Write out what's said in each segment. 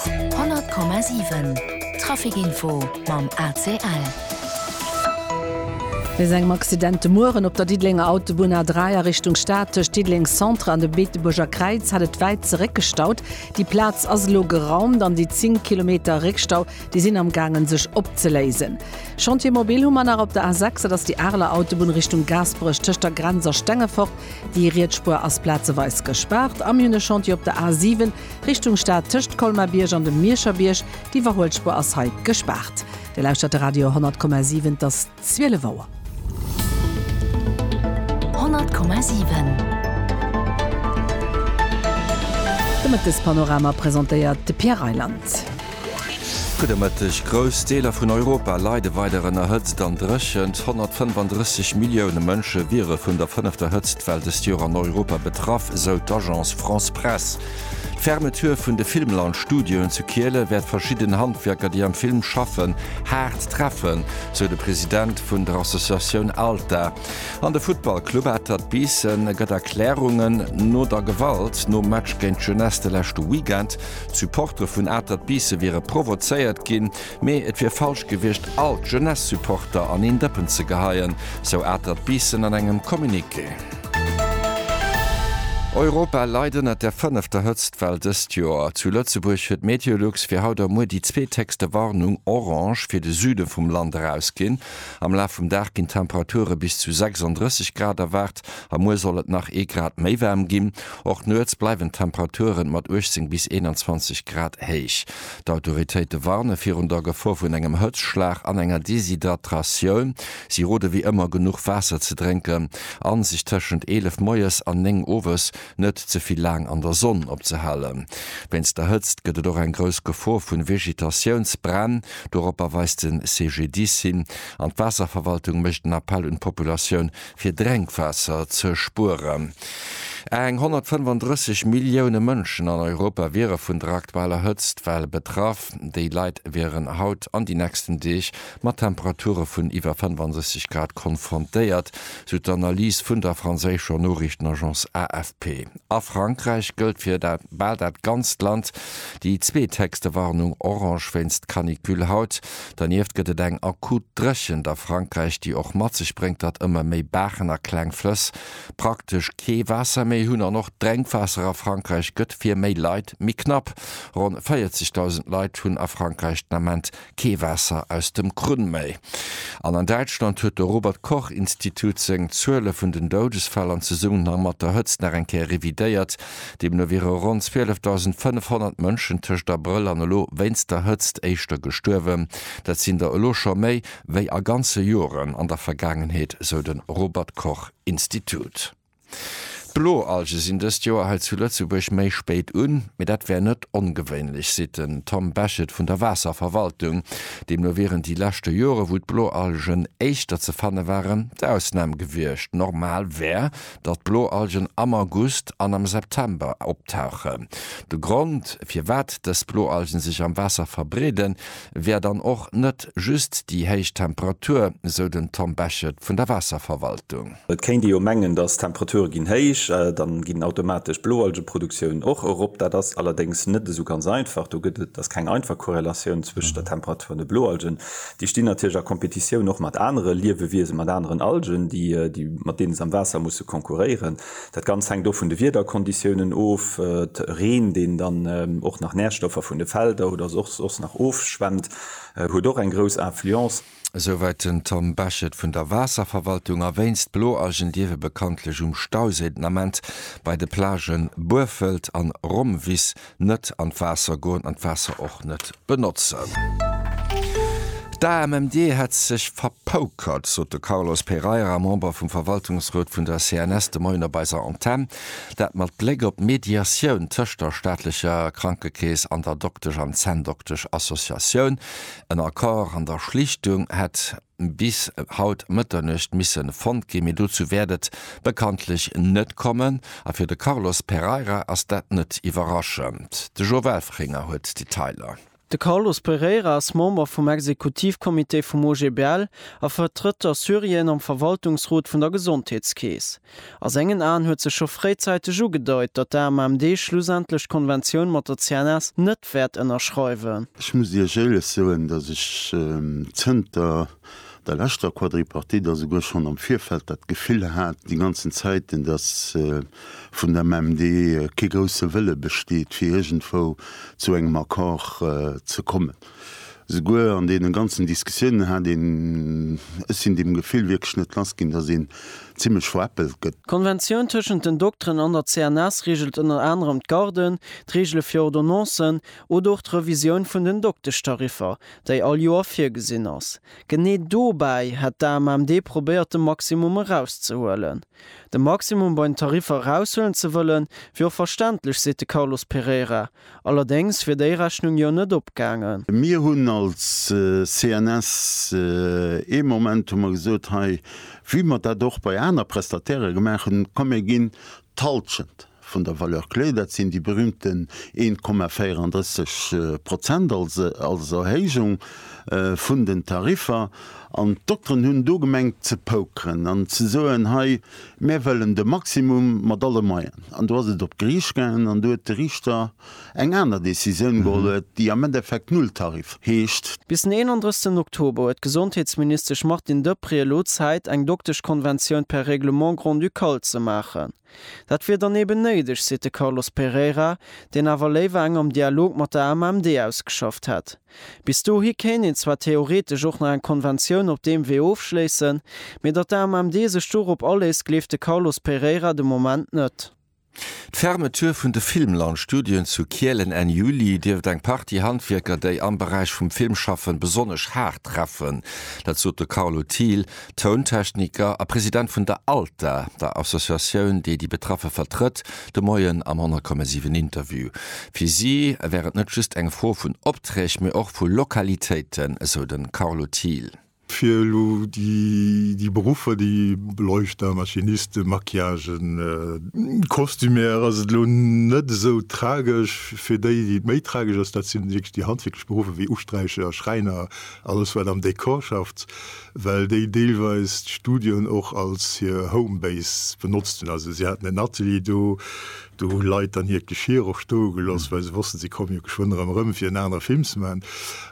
100,7 Trafic Info mam ACL. Nees engem Accident de Mueren op der Diddelenger Autobunn A3 a Richtung Stad. Tëscht Diddeleng Centre an dem Beetebuerger Kräiz hat et wäit zeréckgestaut. Déi Plaz ass elo geraumt an déi 10 Kilometer Réckstau, déi sinn am gaangen sech opzeléisen. Chantier mobil hu mer nach op der A6, dat ass déi Areler Autobunn Richtung Gaasperech tëscht der Grenz a Stengefort. Déi Rietsspuer ass plazeweis gespaart a mir hunn e Chantier op der A 7 Richtung Stad tëscht Colmar-Bierg an dem Mierscher Bierg. D'Iwwerhuelsspuer ass hei gespaart. Dir lauschtert de Radio 10,7, et ass 12 Auer. 10,7 De Mëttespanorama presentéiert de Pierre Reyland. Gudde Mëtteg, Grouss Deeler vun Europa leide weider ënner Hëtzt an Dréchent. 135 Millioune Mënsche wiere vun der fënnefter Hëtztwell dëst Joer an Europa betraff, sou d'Agence France-Presse. D'Fermeture vun de Filmland-Studioen zu Kiele wäert verschidden Handwierker, déi am Film schaffen, haart treffen, sou de President vun der Associatioun ALTA. An de Futtballclub Atert Biissen gëtt Erklärungen no der Gewalt nom Match géint d'Jeunesse de leschte Weekend. D'Supportere vun Atert Biisse wiere provozéiert ginn, mee et wier falsch gewiescht, all d'Jeunesse-Supporter an een Dëppen ze geheien, sou Atert Biissen an engem Communiqué. Europa leit ënnert der fënnefter Hëtztwell dëst Joer. Zu Lëtzebuerg huet Meteolux fir haut a muer déi zweet héchste Warnung, orange, fir de Süde vum Land erausginn. Am Laf vum Dag ginn d'Temperature bis zu 36 Grad erwaart a muer soll et nach ee Grad méi waarm ginn. Och nuets bleiwen d'Temperature mat 18 bis 21 Grad héich. D'Autoritéite warne virun der Gefor vun engem Hëtzschlag an enger Deshydratratioun. Si rode wéi ëmmer genuch Waasser ze drénken a sech tëschent 11 moies an 9 owes net ze vill laang an der Sonn opzehalen. Wéinst der Hëtzt gëtt et och eng grouss Gefor vu Vegetatiounsbränn, doropper weist de CGDIS hin an d'Waasserverwaltung mécht en Appell un d'Populatioun fir Drenkwaasser ze spueren. Eng 135 Millioune Mënschen an Europa wiere vun der aktueller Hëtzt well betraff. Déi Leit wieren haut an déi nächsten Deeg mat Temperature vun iwwer 65 Grad konfrontéiert, sou d'Analys vun der franséischer Noriichtenagence AFP. A Frankräich gëllt fir bal dat ganzt Land déi zweethéchste Warnung, Orange, wéinst Canicule haut. Dernieft gëtt et eng akut Dréchent a Frankräich, déi och mat sech bréngt, datt ëmmer méi Baachen a kleng Flëss praktesch kee Waasser méi hunn an och d'Drénkwaasser a Frankräich gëtt fir méi Leit méi knapp. Ronn 40.000 Leit hunn a Frankräich den Ament kee Waasser aus dem Krunn méi. An an Däitschland huet de Robert Koch Institut seng Zuele vun den Doudesfäll an Zesummenhang mat der Hëtzt nach eng Kéier revidéiert. Deemno wiere ronn 12.500 Mënschen tëscht Abrëll an elo wéinst der Hëtzt éischter gestuerwen. Dat sinn der elo scho méi wéi a ganze Joren an der Vergaangenheet, sou de Robert Koch Institut. D'Bloalge sinn dëst Joer hei zu Lëtzebuerg méi spéit un, mee dat wär net ongewéinlech, seet den Tom Bechet vun der Waasserverwaltung. Deemno wieren déi leschte Jore wou d'Bloalgen éischter ze fanne waren, d'Ausnam gewiescht. Normal wär, datt Bloalgen am August an am September optauchen. De Grond, firwat dës Bloalgen sech am Waasser verbreeden, wär dann och net just déi héich Temperatur, sou den Tom Bechet vun der Waasserverwaltung. Et kéint ee jo mengen, datt d'Temperature ginn héich, da ginn automatesch d'Bloalgeproduktioun och erop. Dat ass allerdéngs net esou ganz einfach. Do gëtt et ass keng einfach Korrelatioun zwëscht der Temperatur an de Bloalgen. Déi stinn natierlech a Kompetitioun och mat anere Liewewiesen, mat aneren Algen, déi, mat deene se am Waasser musse konkurréieren. Dat Ganzt hänkt och vun de Wiederkonditiounen of, Reen, deen dann och nach Närstoffer vun de Felder oder soss nach ofschwemmt, huet och eng grouss Influence. Esouwäit den Tom Bechet vun der Waasserverwaltung. A wéinst Bloalgen dierfe bekanntlech um Stausee den Ament bei de Plagë Buerfelt an Rommwiss Net an d'Waasser goen an d'Waasser och net benotzen. D'AMMD hätt sech verpoukert, sot de Carlos Pereira, Member vum Verwaltungsrot vun der CNS de Moien op eiser Antenn. Dat mat Bléck op d'Mediatioun tëscht der staatlecher Krankekeess an der Doktesch an Zänndoktesch-Associatioun. En Accord an der Schlichtung hätt. bis haut Mëtternuecht misse fonnt ginn, mee dozou wäert et bekanntlech net kommen. A fir de Carlos Pereira ass dat net iwwerraschend. De Joe Welfringer huet d'Detailer. De Carlos Pereira ass Member vum Exekutivcomité vum OGBL a vertrëtt d'Assyrien am Verwaltungsrot vun der Gesondheetskeess. A sengen Aen huet sech scho fréizeiteg ugedeut, datt d'AMMD schlussendlech d'Konventioun mat der CNS net wäert ënnerschreiwen. Ech muss Iech éirlech soen, datt ech zënter der leschter Quadripartite a souguer schonn am Virfeld dat Gefill hat déi ganzen Zäiten, datt vun der AMMD kee grousse Wëlle besteet, fir iergendwou zu engem Accord ze kommen. Souguer an deenen ganzen Diskussiounen hat een, ech sinn deem Gefill wierklech net lass ginn, dass een zimlech veräppelt gëtt. D'Konventioun tëschent den Dokteren an der CNS reegelt ënner anerem d'Garden, d'Reegele fir Ordonnancen oder och d'Revisioun vun den Dokteschtariffer, déi all Joer virgesinn ass. Genee dobäi hätt d'AMMD probéiert de Maximum erauszehuelen. De Maximum bei den Tariffer eraushuelen ze wëllen, wier och verständlech, seet de Carlos Pereira. Allerdéngs wier déi Rechnung jo net opgaangen. Mir hunn als CNS ee Moment hu mer gesot, hei wéi mer dat och bei aner Prestatairë gemaach hunn, komm mir ginn d'Halschent vun der Valeur clé, dat sinn déi berühmten 1,34 Prozent als Erhéijung vun den Tariffer. An d'Dokteren hunn do gemengt ze pokeren an ze soen, hei, Mär wëllen de Maximum mat alle Moyen. An do ass et op d'Gericht gaangen an do huet de Richter eng aner Decisioun geholl, déi am Endeffekt Nulltarif heescht. Bis den 31 Oktober huet d'Gesondheetsministesch Martine Deprez elo Zäit, eng Dokteschkonventioun per Règlement grand-ducal ze maachen. Dat wier dann eben néideg, seet de Carlos Pereira, deen awer léiwer eng am Dialog mat der AMMD ausgeschafft hätt. Bis dohi kéint een zwar theoretesch och nach eng Konventioun op deem Wee ofschléissen, mee datt d'AMMD sech dorop aléisst, gleeft de Carlos Pereira de Moment net. D'Fermeture vun de Filmland Studioen zu Kielen Enn Juli dierft eng Partie Handwierker, déi am Beräich vum Film schaffen, besonnesch haart treffen. Dat sot de Carlo Thiel, Tountechniker a President vun der ALTA, der Associatioun, déi déi Betraffe vertrëtt, de Moien am 10,7 Interview. Fir si wär et net just eng Fro vun Opträg, mee och vu Lokalitéiten, esou de Carlo Thiel. Fir elo déi Beruffer, déi Beleuchter, Maschinisten, Maquillagen, Kostümär, ass et elo net esou tragesch. Fir déi, déi et méi tragesch ass, dat si wierklech déi handwierklech Beruffer, wéi Usträicher, Schräiner, alles wat am Dekor schafft. well déi deelweis d'Studioen och als hir Homebase benotzt hunn. Also si haten en Atelier do, do hu Leit dann hiert Geschir och stoe gelooss, well se wossten, si komme jo geschwënn erëm erëm, fir en anere Film ze maachen.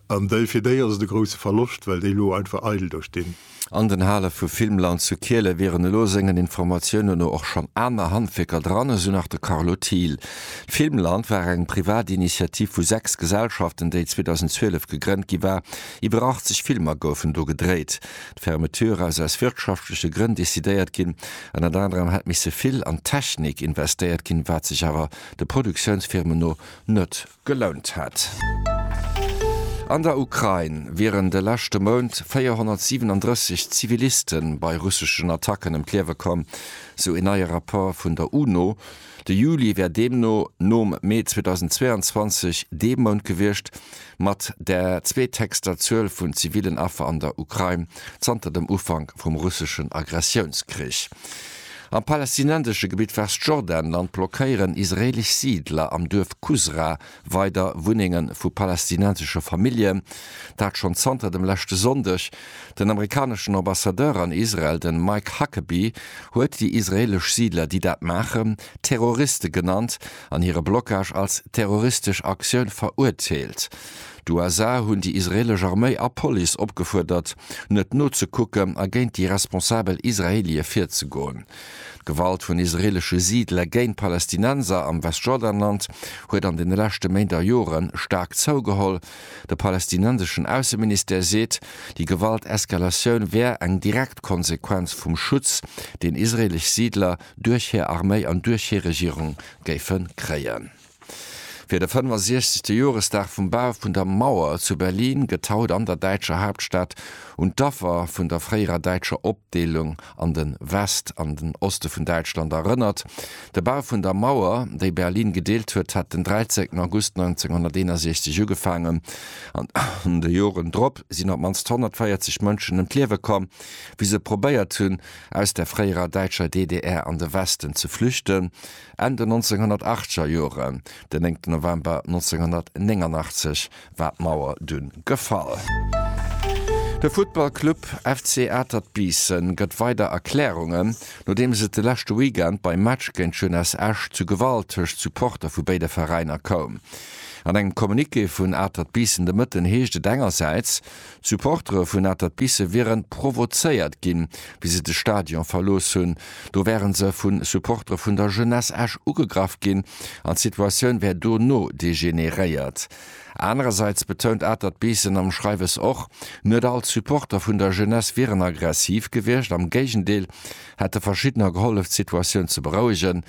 An déi, fir déi ass et e grousse Verloscht, well déi elo einfach eidel do stinn. An den Hale vu Filmland zu Kiele wieren elo sengen Informatiounen no och schonn aner Handwierker dran, esou nach de Carlo Thiel. D'Filmland war eng privat Initiativ vu sechs Gesellschaften, déi 2012 gegrënnt gi war, Iwwer 80 Filmer goufen do gedréit. D'Fermeture ass aus wirtschaftleche Grënn decidéiert ginn. Ënnert anerem hätt misse vill an d'Technik investéiert ginn, wat sech awer de Produktiounsfirmen no net gelount hätt. An der Ukrain wieren de leschte Mount 437 Ziviliste bei russeschen Attacken ëm d'Liewe komm, sou een neie Rapport vun der UNO. De Juli wär deemno nom Mee 2022 dee Mount gewiescht mat der zweetheechster Zuel vun zivillen Affer an der Ukrain zanter dem Ufank vum russeschen Aggressiounskrich. Am palästinensesche Gebitt Westjordanland blockéieren israeelesch Siidler am Duerf Kusra Weider Wunnenge vu palästinensesche Famillje, dat schonn zanter dem leschte Sonndeg. Den amerikaneschen Ambassadeur an Israel, de Mike Huckabee, huet déi israeelesch Siidler, déi dat maachen, Terroriste genannt an hire Blockage als terroristesch Aktioun verurteelt. D'USA hunn déi israeelesch Arméi a Police opgefuerdert, net nozekucken a géint déi responsabel Israeelie virzegoen. D'Gewalt vun israeelesche Siidler géint d'Palästinenser am Westjordanland huet an deene leschte Méint a Jore staark zougeholl. De palästinenseschen Ausseministère seet, déi Gewalteskalatioun wär eng direkt Konsequenz vum Schutz, deen israeelesch Siidler duerch hir Arméi an duerch hir Regierung géife kréien. Fir de 65. Joresdag vum Bau vun der Mauer zu Berlin gëtt haut an der däitscher Haaptstad un d'Affer vun der fréierer däitscher Opdeelung an de West an den Oste vun Däitschland erënnert. De Bau vun der Mauer, déi Berlin gedeelt huet, hat den 13 August 1961 ugefaangen an an de Joren drop sinn op d'mannst 140 Mënschen ëm d'Liewe komm, wéi se probéiert hunn, aus der fréierer däitscher DDR an de Westen ze flüchten. Enn den 1980er Joren, den 9 November 1989, war d'Mauer dunn gefall. De Futtballclub FC Atert Biissen gëtt weider Erklärungen, nodeems et de leschte Weekend beim Match géint Jeunesse Esch zu Gewalt tëscht Supporter vu béide Veräiner koum. An engem Communiqué vun Atert Biissen de Mëtten heescht et engersäits, Supportere vun Atert Bissen wiere provozéiert ginn, wéi se de Stadion verlooss hunn. Do wäre se vu Supportere vun der Jeunesse Esch ugegraff ginn an d'Situatioun wär dono degeneréiert. Anerersäits betount Atert Bissen am Schreiwes och, net all d'Supporter vun der Jeunesse wieren aggressiv gewiescht, am Géigendeel hätte verschiddener gehollef d'Situatioun ze berouegen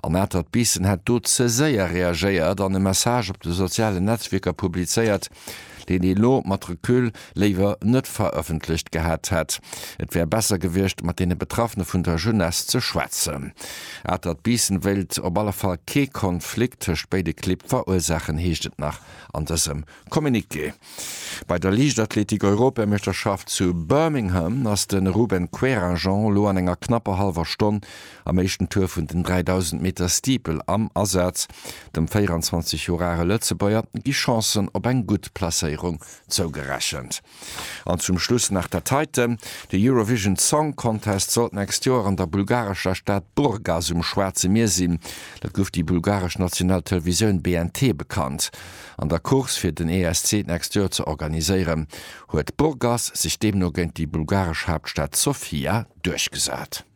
an Atert Bissen hätt do ze séier reagéiert an e Message op de sozialen Netzwierker publizéiert, deen ee lo mat Recul léiwer net verëffentlecht gehat hätt. Et wär besser gewiescht, mat deene Betraffene vun der Jeunesse ze schwätzen. Atert Biissen wéilt op alle Fall kee Konflikt tëscht béide Clibb verursaachen, heescht et nach an dësem Communiqué. Bei der Liichtathletik-Europameeschterschaft zu Birmingham ass de Ruben Queragent lo an enger knapper hallwer Stonn Am éischten Tour vun den 3000 Meter Steeple am Asaz, dem 24 Joer are Lëtzebuerger, gi Chancen op eng gutt Placéierung zougerechent. An zum Schluss nach der Taite, De Eurovision Song Contest sollt d'nächst Joer an der bulgarescher Stad Burgas um Schwaarze Mier sinn. Dat gouf déi bulgaresch national Televisioun BNT bekannt. An der Course fir den ESC d'nächst Joer ze organiséieren, huet Burgas sech deemno géint déi bulgaresch Haaptstad Sofia duerchgesat.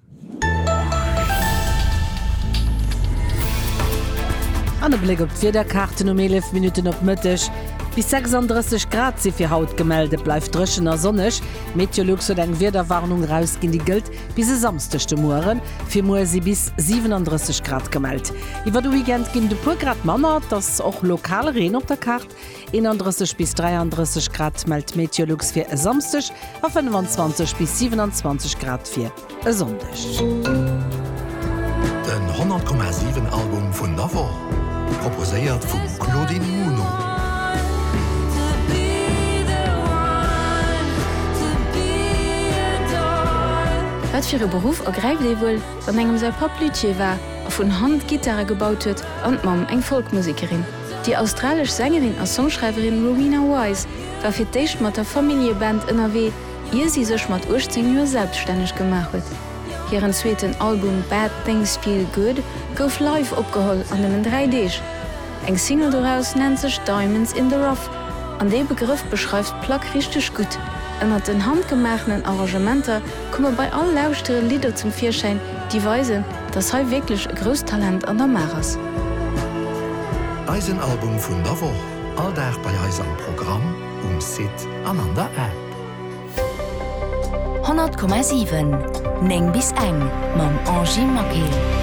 An e Bléck op d'Wiederkaarten um 11 Minutten op Mëtteg, Bis 36 Grad si fir haut gemellt, et bleift dréchen a sonneg. Meteolux huet eng Wiederwarnung erausginn, déi gëllt bis e Samsdeg de Muere. Fir muer si bis 37 Grad gemellt. Iwwer de Weekend ginn et e puer Grad manner, et ass och lokal Reen op der Kaart. 31 bis 33 Grad mellt d'Meteolux fir e Samsdeg a 25 bis 27 Grad fir e Sonndeg. Den 100,7 Album vun der Woch proposéiert vum Claudine Muno. Wat fir e Beruff ergräift ee wuel, wann engem säi Papp Luthier war a vun Hand Gittare gebaut huet an d'Mamm eng Folkmusekerin? Déi australesch Sängerin a Songschreiwerin Rowena Wise war fir d'éischt mat der Familljeband ënnerwee, ier si sech mat 18 Joer selbstänneg gemaach huet. Hiren zweeten Album Bad Things Feel Good gouf live opgeholl an nëmmen dräi Deeg. Eng Single doraus nennt sech Diamonds in the Rough an dee Begrëff beschreift d'Plack richteg gutt. Ënnert den handgemaachenen Arrangementer komme bei all Lauschtere Lidder zum Virschäin, déi weisen, dass hei wierklech e grousst Talent an der Maach ass. Eisen Album vun der Woch, all Dag bei eis am Programm, um Site an an der App. 100,7, 9 bis eng mam Angie Maquet.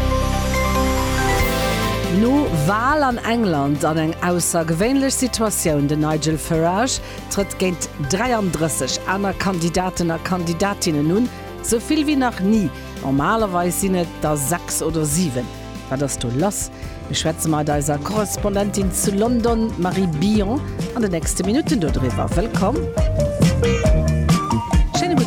No Wal an England an eng aussergewéinlech Situatioun, den Nigel Farage trëtt géint 33 aner Kandidaten a Kandidatinnen un, sou vill wéi nach ni. Normalerweis sinn et der sechs oder siwen. Wat ass do lass? Mir schwätze mat eiser Korrespondentin zu London, Marie Billon, an de nächste Minutten dodriwwer. Wëllkomm!